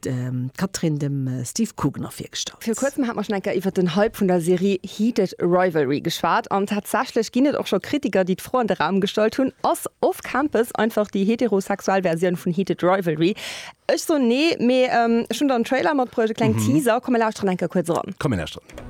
D'Catherine dem Steve Kugner virgestallt. Vir kuerzem hat mer enker iwwert den Hype vun der Serie Heated Rivalry geschwat an tatsächlech ginn et och scho Kritiker déi d'Fro an de Raum gestallt hunn, Ass Off Campus einfach déi heterosexuell Versioun vun Heated Rivalry? Ech soen nee, mee ech hunn der en Trailer matbruecht, e kleng Teaser. Komm mir lauschteren enker kuerz eran. Komm mir lauschteren.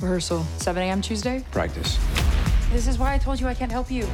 Rehearsal 7 am Tuesday. Practice. This is why I told you I can't help you.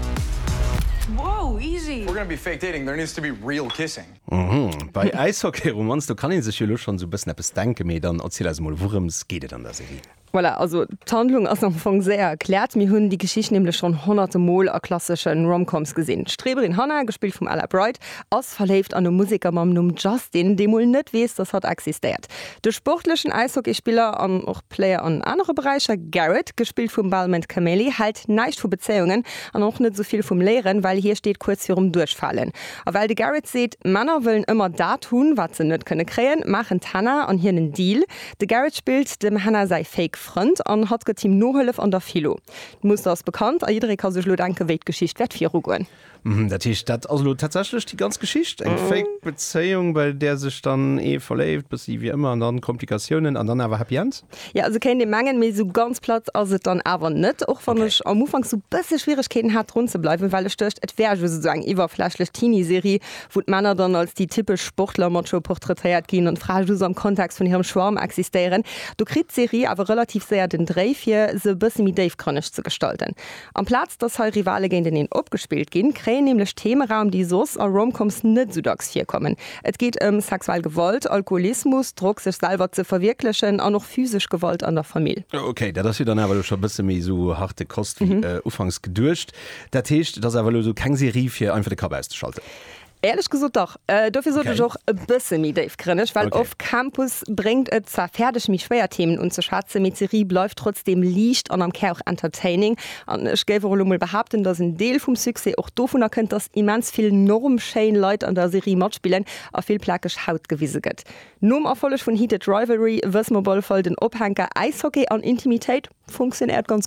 Wow, easy! We're gonna be fake dating, there needs to be real kissing. Uhmm, bei Äishockeyromanz, do kann een sech jo lo schonn esou e bëssen eppes denken, mee dann erziel eis emol, wourëms geet et an der Serie? Voilà, also d'Handlung ass am Fong séier erkläert. Mir hunn déi Geschicht nämlech schonn honnerte Mol a klassesche Rom-Coms gesinn. D'Streberin Hannah, gespillt vum Ella Bright, ass verléift an e Museker mam Numm Justin, dee mol net weess, dass hatt existéiert. De sportlechen Äishockeyspiller an och Player an anere Beräicher. Garrett, gespillt vum Balmond Cameli, hält näischt vu Bezéiungen an och net esou vill vum Léieren, well hie steet kuerz virum Duerchfalen. A well de Garrett seet, Männer wëllen ëmmer dat hunn, wat se net kënne kréien, maachen d'Hannah an hien en Deal. De Garrett spillt dem Hannah säi fake Frënd an hatt gëtt him Nohëllef an der Philo. D'Muster ass bekannt a jidderee ka sech elo denken, wéi d'Geschicht wäert virugoen. Mhm, dat heescht, dat ass elo tatsächlech déi ganz Geschicht, eng fake Bezéiung, bei där sech dann ee verléift, bëssi wéi ëmmer, an dann Komplikatiounen an dann awer Happy End? Jo, esou kéint ee mengen, mee esou ganz platt ass et dann awer net, och wann ech am Ufank esou bësse Schwieregkeeten hat drun ze bleiwen, well ech duecht, et wär just esou eng iwwerflächlech Teenie-Serie, wou d'Männer dann als déi typesch Sportler-Macho portraitéiert ginn an d'Frae just am Kontext vun hirem Schwarm existéieren. Do kritt d'Serie awer relativ séier den Dréi, fir se e bësse méi déifgrënneg ze gestalten. Amplaz dass hei Rivale géinteneen opgespillt ginn, kréien nämlech Theme Raum, déi soss a Rom-Coms net esou dacks virkommen. Et geet ëm sexuell Gewalt, Alkoholismus, Drock, sech selwer ze verwierklechen an och physesch Gewalt an der Famill. Ok, dat ass jo dann awer elo scho e bësse méi esou harte Kost wéi ufanks geduecht. Dat heescht, et ass awer elo esou keng Serie fir einfach de Kapp auszeschalten? Éierlech gesot dach. Dofir sot ech och e bësse méi déifgrënneg, well Off Campus bréngt et zwar fäerdeg méi schwéier Themen unzeschwätzen, mee d'Serie bleift trotzdeem liicht an am Kär och entertaining. An ech géif och elo mol behaapten, datt en Deel vum Succès och dovunner kënnt, datt immens vill norm schéin Leit an der Serie matspillen a vill plakeg Haut gewise gëtt. Nom Erfolleg vun Heated Rivalry wësse mer op alle Fall, den Ophänker Äishockey an Intimitéit funktionéiert ganz gutt.